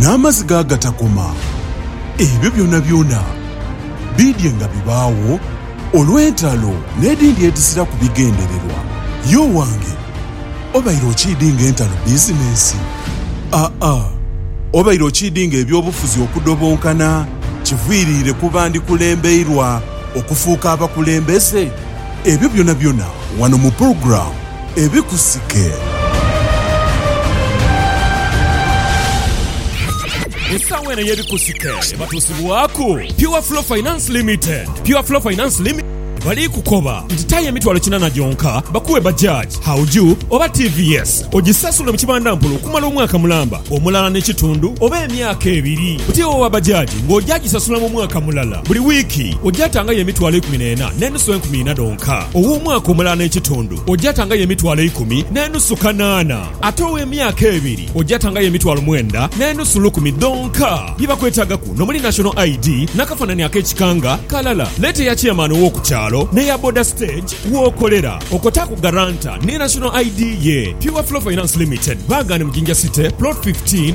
n'amaziga agatakoma, ebyo byonabyona biidye nga bibaagho olw'entalo n'edhindi edhiziraku bigendererwa. Ye owange, obaire okiidinga entalo bizinensi? Aa, obaire okiidinga eby'obufuzi okudobonkana kiviiriire ku bandi kulembeirwa okufuuka abakulembeze? Ebyo byonabyona wano mu pulogulaamu. ebikusike. Mu saawa eno eyebikusike batuusibwaku Pure Flow Finance Limited. Pure Flow Finance Limited bali kukoba nti tayo emitwalo kinana gyonka bakuwe Bajaj, Hauju oba TVS ogisasule mu kibandampola okumala omwaka mulamba, omulala ne kitundu oba emyaka ebiri. Buti owowa Bajaj nga oja gisasula mu mwaka mulala buli wiiki oja tangayo emitwalo ikumi nena. so enkumi ina dhonka. Ow'omwaka omulala n'ekitundu oja atangayo emitwalo eikumi n'enusu kanaana, ate ow'emyaka ebiri oja atangayo emitwalo mwenda n'enusu lukumi dhonka. Bye bakwetaagaku n'omuli National ID n'akafaanani ak'ekika nga kalala. Leeta eya Chairman ow'oku kyalo n'eya Boda Stage w'okolera. Okotaaku Guarantor ni National ID ye. Pure Flow Finance Limited, Baagane mu Jinja City, Plot 15.